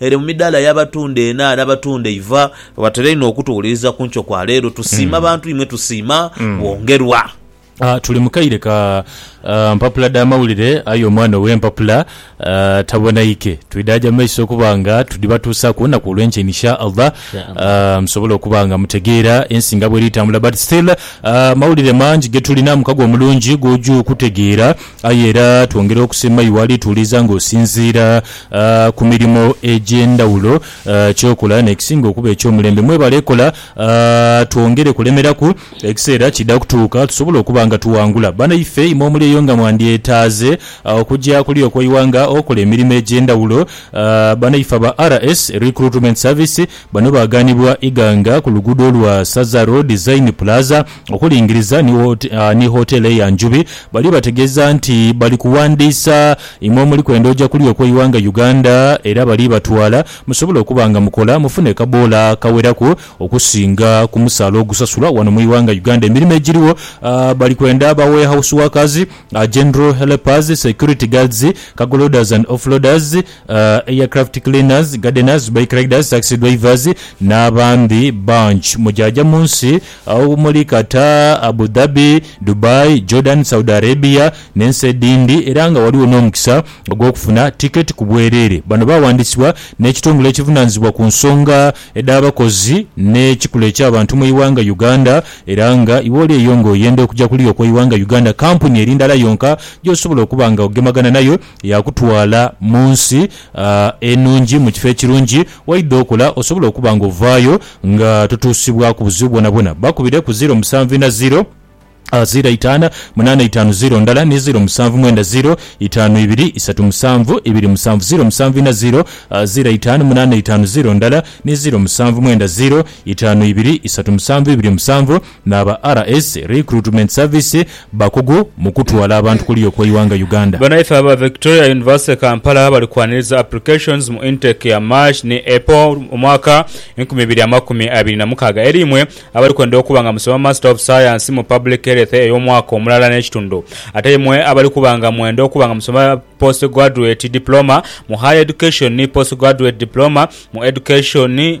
Ere mu midaala y'abatunda ena n'abatunda eiva. Watera inho okutuwuliriza ku nkyo kwa leero. Tusiima bantu imwe tusiima bwongerwa. Tuli mu kaire ka mpapula dha mawulire aye omwana ow'empapula tabonaike. Twidaaja mu maiso okuba nga tudhibatuusaaku olunaku olw'enkya in sha Allah musobole okuba nga mutegeera ensi nga bweri tambula but still mawulire mangi getulina mukago omulungi gw'oja okutegeera. Aye era twongera okusiima iwe alituwuliza nga osinziira ku mirimo egy'endhawulo ky'okola n'ekisinga okuba eky'omulembe. Mwebale kola twongere kulemeraku ekiseera kiidha kutuuka tusobole okuba nga tuwangula. Banaife imwe omuli eyo nga mwandyetaaze okugya kuli okwo iwanga okola emirimo egy'endhawulo, banaife aba RS Recruitment Service bano baaganibwa Iganga ku luguudo lwa Saza Road, Zain Plaza, okulingiriza ni Hotel eya Njubi bali bategeeza nti bali kuwandiisa imwe omuli kwenda oja kuli okweiwanga Uganda era bali batwala musobole okuba nga mukola mufune kaboola kaweraku okusinga kumusaala ogusasulwa wano muiwanga Uganda emirimo egiriwo bali kwenda ba warehouse workers, general helpers, security guards, cargo loaders and offloaders, aircraft cleaners, gardeners, bike riders, taxi drivers nabandi bangi mujaja munsi Agho muli Qatar, Abu Dhabi, Dubai, Jordan, Saudi Arabia n'ensi edhindi era nga ghaligho n'omukisa ogw'okufuna tiketi ku bwereere. Bano baawandisibwa n'ekitongole ekivunaanyizibwa ku nsonga edh'abakozi n'ekikula eky'abantu mu ighanga Uganda era nga iwe oli eyo nga oyenda okuja kuluya okweighanga Uganda kampuni eri ndala yonka gy'osobola okuba nga ogemagana nayo yaakutwala mu nsi enungi mu kifo ekirungi waidha okola osobola okuba nga ovaayo Nga totuusibwaku buzibu bwonabwona, bakubire ku ziiro musanvu ina ziiro, ziiro itaana munaana itaanu ziiro ndala ni ziiro musanvu mwenda ziiro itaanu ibiri isatu musanvu ibiri musanvu ziiro musanvu ina ziiro, ziiro itaanu munaana itaanu ziiro ndala ni ziiro musanvu mwenda ziiro itaanu ibiri isatu musanvu ibiri musanvu. n'aba RS, Recruitment Service, bakugu mu kutwala abantu kuliyo kw'eighanga Uganda. Banaife aba Victoria University Kampala bali kwaniriza applications mu intake ya March ni April omwaka enkumi ibiri amakumi abiri na mukaaga eri imwe abali kwenda okuba nga musoma Master of Science mu Public Health ey'omwaka omulala n'ekitundu ate imwe abali kuba nga mwenda okuba nga musoma Postgraduate Diploma mu Higher Education ni Postgraduate Diploma mu Education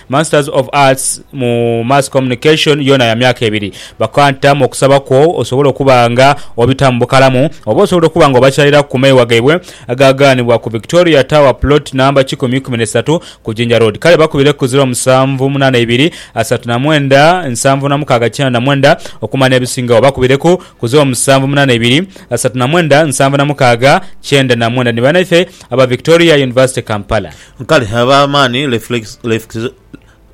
Masters of Arts mu Mass Communication yoona ya myaka ebiri. Bakwanta mu okusaba kwo osobole okuba nga obitaamu bukalamu oba osobola okuba nga obakyaliraku ku meewa gaibwe agaagaanibwa ku Victoria Tower plot namba kikumi ikumi n'esatu ku Jinja Road. Kale bakubire ku ziro musanvu munaana ibiri asatu na mwenda nsanvu na mukaaga kyenda na mwenda okumanya ebisingawo. Oba bakubireku ku ziro musanvu munaana ibiri asatu na mwenda nsanvu na mukaaga kyenda na mwenda. Ni banaithe aba Victoria University Kampala. Kale ab'amaani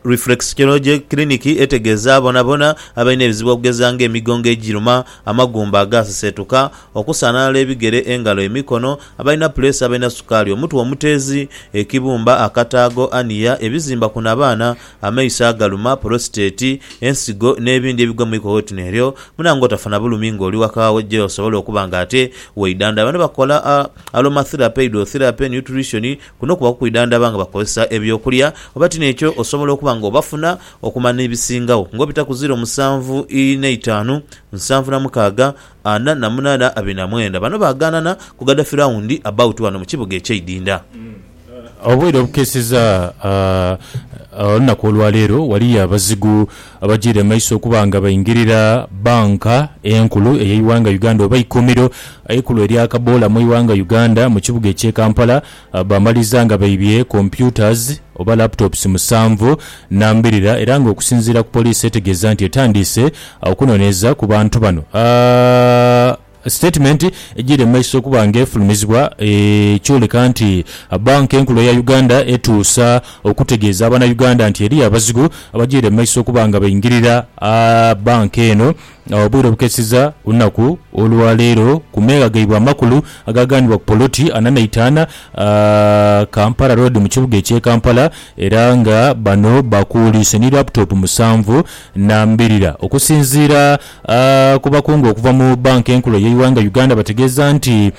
Reflexology Clinic etegeeza bonabona abalina ebizibu okugeza nga emigongo egiruma, amagumba agaaseseetuka, okusaanaala ebigere, engalo, emikono, abalina puleesa, abalina sukaali, omutwe omuteezi, ekibumba, akataago, aniya, ebizimba ku nabaana, amaiso agaluma, polositeti, ensigo n'ebindi ebigwa mu iko wetuno eryo muna ng'otafa na bulumi ng'oli waka wo gye osobola okuba ng'ate weidhandhaba. Bano bakola aromatherapy, hydrotherapy ni nutrition. Kuno kuba kukwidhandhaba nga bakozesa eby'okulya oba ti n'ekyo osobola okuba ng'obafuna okumala n'ebisingawo ng'obita ku ziro musanvu ina itaanu, nsanvu na mukaaga, ana na munana abiri na mwenda. Bano bagaanana ku Gaddafi Round about wano mu kibuga eky'eidinda. Obwire obukeeseza olunaku olwaleero ghaliyo abazigu abajiire mumaiso okuba nga baingirira banka enkulu eyeighanga Uganda oba eikumiro eikulu erya kaboola mwighanga Uganda mukibuga ekye Kampala bamaliza nga baibye computers oba laptops musanvu nambirira era nga okusinziira ku police etegeeza nti etandiise okunoneeza kubantu bano. Sitatimenti egyiire mu maiso okuba nga efulumizibwa ekyoleka nti Banka Enkulu eya Uganda etuusa okutegeeza abana Uganda nti eriyo abazigu abagyiire mu maiso okuba nga baingirira banka eno obwire obukeseza ku lunaku olwaleero ku meegha gaibwe amakulu agaaganibwa ku poloti ana naitaana Kampala Road mu kibuga ekye Kampala era nga bano bakuuliise ni laptop musanvu nambirira okusinziira Abakungu okuva mu Bank enkulu eyeighanga Uganda bategeeza nti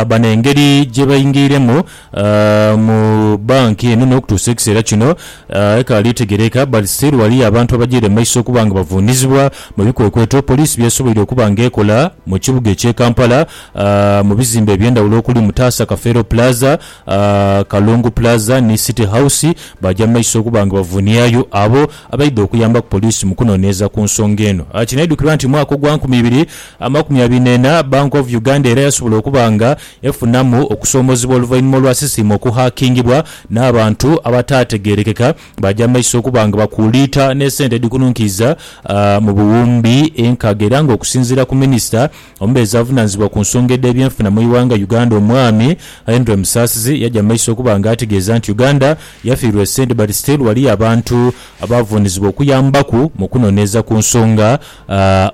bano engeri gyebaingiiremu mu Bank eno n'okutuusa ekiseera kino ekaali tegereeka but still ghaliyo abantu abajaire mu maiso okuba nga bavuunizibwa mu bikwekweto poliisi byesoboire okuba nga ekola mu kibuga ekye Kampala mu bizimbe ebyendhawulo okuli Mutaasa Kafeero Plaza, Kalungu Plaza ni City House baja mu maiso okuba nga bavuuniayo abo abaidha okuyambaku poliisi mu kunoneeza ku nsonga eno. Kinaidhukirwa nti mwaka ogwa nkumi ibiri amakumi abiri n'ena, Bank of Uganda era yasobola okuba nga efunamu okusoomozebwa oluvainhuma olwa sisitiimu okuhackingibwa n'abantu abataategerekeka baaja mumaiso okuba nga bakuuliita n'esente edhikununkiiza mu buwumbi enkaaga era nga okusinziira ku minisita Omubeezi avunanizibwa ku nsonga edh'ebyenfuna mu ighanga Uganda omwami Henry Musasizi yaja mu maiso okuba nga ategeeza nti Uganda yafiirwa esente but still waliyo abantu abavunizibwa okuyambaku mu kunoneeza ku nsonga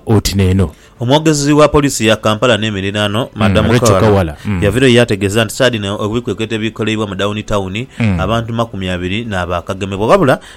oti neeno. Omwogezi wa poliisi ya Kampala n'emiriraano, Madam Rachel Kawala yavirayo yaategeeza nti saadi eno ebikwekweto ebikoleibwa mu Dawuni Tawuni, abantu makumi abiri naabo akagemebwa wabula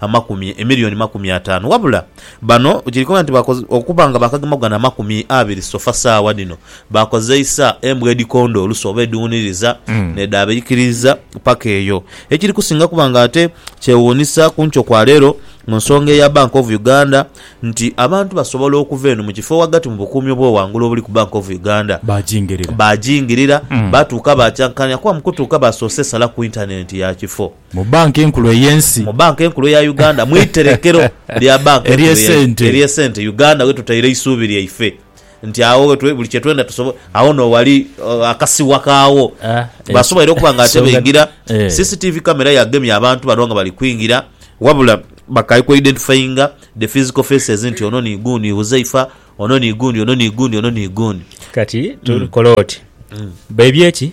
amakumi emiliyoni makumi ataanu wabula bano kiri koona nti okuba nga baakagema ku gano amakumi abiri sofa saagha dhino baakozeisa embwa edhikonda olusu oba edhiwuniriza nedhabaikiriiza paka eyo. Ekiri kusinga kuba nga ate kyewuunisa ku nkyo kwa leero mu nsonga eya Bank of Uganda nti abantu basobola okuva eno mu kifo ghagati mu bukuumi obw'oghangulu obuli ku Bank of Uganda baajingirira baatuuka baacankanhia kuba mu kutuuka baasoose sala ku intanenti ya kifo Mu Bbanka Enkulu ey'Ensi. Mu Bbanka Enkulu eya Uganda, mu iterekero lya Bbanka Enkulu ey'Esente, Uganda ghe tutaire eisuubi lyaife nti agho ghe buli kye twenda tusobola. Agho no ghali akasiwa kaagho. Basoboire okuba nga ate baingira, CCTV camera yagemye abantu bano nga bali kwingira, wabula bakaai ku identifyinga the physical faces nti ono ni gundi Huzaifa, ono ni gundi, ono ni gundi, ono ni gundi. Kati tukola oti, baibye ki?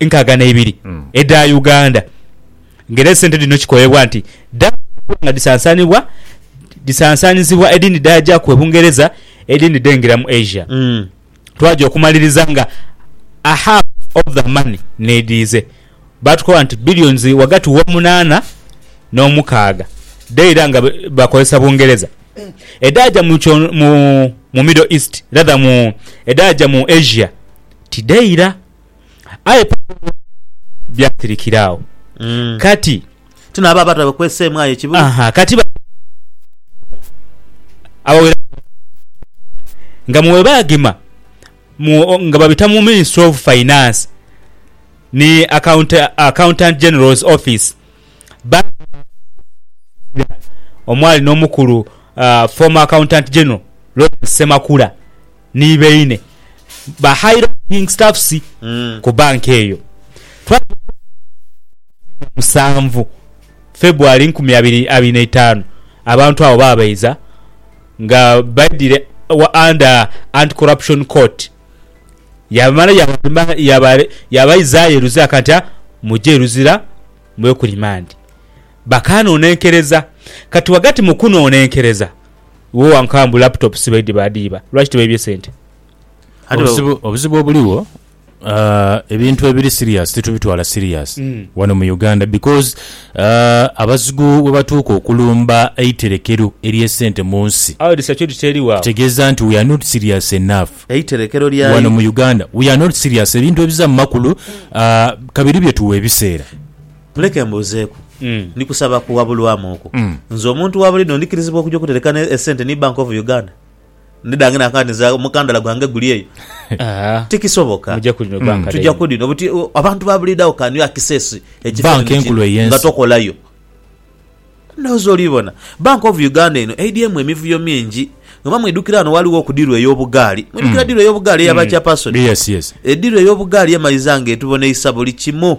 nkaaga n'eibiri edha Uganda nga era esente dhino kikoebwa nti dhaakubwa nga dhisansanibwa dhisansanizibwa edhindi dhaaja ku e Bungereza edhindi dheengira mu Asia twaja okumaliriza nga a half of the money n'edhiize baatukoba nti billions ghagati w'omunaana n'omukaaga dhaira nga bakozesa Bungereza edhaaja mu mu Middle East rather mu edhaaja mu Asia tidhaira. Aye Paulo byasirikira agho. Kati. Ti n'abo abata bakweseemu aye ekibuga. Aha, kati bano abaweraku bangi nga mwe baagema mu, nga babita mu Ministry of Finance ni Account, Accountant General's Office baagema omwali n'omukulu, ah, former Accountant General Lawrence Ssemakula. ni baine ba high ranking staffs ku banka eyo. Twaja okwekebera ku musanvu February nkumi abiri abiri na itaanu, abantu abo baabaiza nga baidhire under Anti Corruption Court. Yaamala yaabaizayo e Luzira kati a muje e Luzira mube ku rimandi. Bakaanoonenkereza. Kati ghagati mu kunoonenkereza. Iwe wankaa mbu laptop si baidhi baadhiiba, lwaki tibaibye sente? Ate ba- Obuzibu, obuzibu obuligho ah, ebintu ebiri serious titubitwala serious Mm. wano mu Uganda because ah, abazigu webatuuka okulumba eiterekero ery'esente mu nsi Awo edhi security eriwo awo. kitegeeza nti we are not serious enough Eiterekero lya wano mu Uganda we are not serious ebintu ebiza mu makulu ah, kabiri byetuwa ebiseera Leka mbuuzeeku, ni kusaba kuwabulwamu okwo? Nze omuntu wa buliidho ndikirizibwa okuja okutereka esente ni Bank of Uganda? Ndidhange na kaadi nze omukandala gwange guli eyo? Tikisoboka. Tuja ku dhino buti abantu ba buliidho agho can you access ekifanhanhi kino nga tokolayo? Ndhowooza oli bona. Bank of Uganda eno eidhyemu emivuyo mingi. Oba mwidhukira ghano ghaligho ku diru ey'obugaali. Mwidhukira diru ey'obugaali eya ba chairperson? Ediru ey'obugaali emaliza nga etuboneisa buli kimu.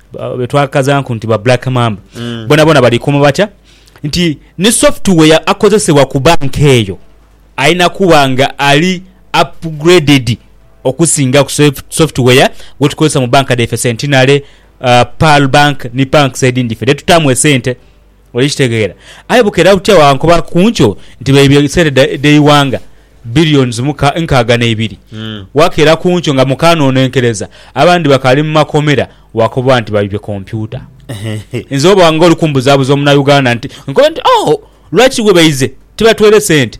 ba- be twakazanku nti ba black mamba Mm. bonabona balikuuma batya nti ni software akozesebwa ku banka eyo alina kuba nga ali upgraded okusinga ku sof- software gwetukozesa mu banka dhaife centenary uh, pearl bank ni banks edindi fe dhetutaamu esente Oli kitegeera? Aye bukeera butya bwankoba ku nkyo nti beibye sente dh'eighanga billions nkaaga n'eibiri. Wakeera ku nkyo nga mukaanonenkereza, abandi bakaali mu makomera, wakoba nti baibye kompyuta. Nze oba nga oli kumbuzaabuza Omunayuganda nti nkobe nti, Oh, lwaki we baize tibatweire sente?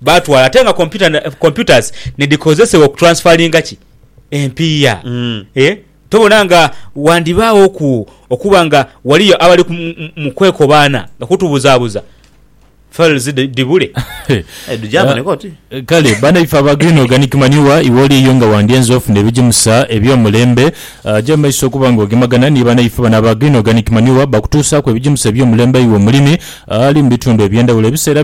Baatwala ate nga kompyuta na- computers nidhikozesebwa okutransferringa ki? Empiiya. Mm. Eh, tobona nga wandibaagho ku okuba nga waliyo abali ku- mu- mu- mu kwekobaana nga kutubuzaabuza files dhi- dhibule. Eh, dhujaaboneka oti? Kale banaife aba Green Organic Manure iwe oliyo nga wandyenze ofuna ebigimusa eby'omulembe ah, ja mu maiso okuba nga ogemagana ni banaife bano aba Green Organic Manure bakutuusaaku ebigimusa eby'omulembe iwe omulimi ah, ali mu bitundu eby'endhawulo ebiseera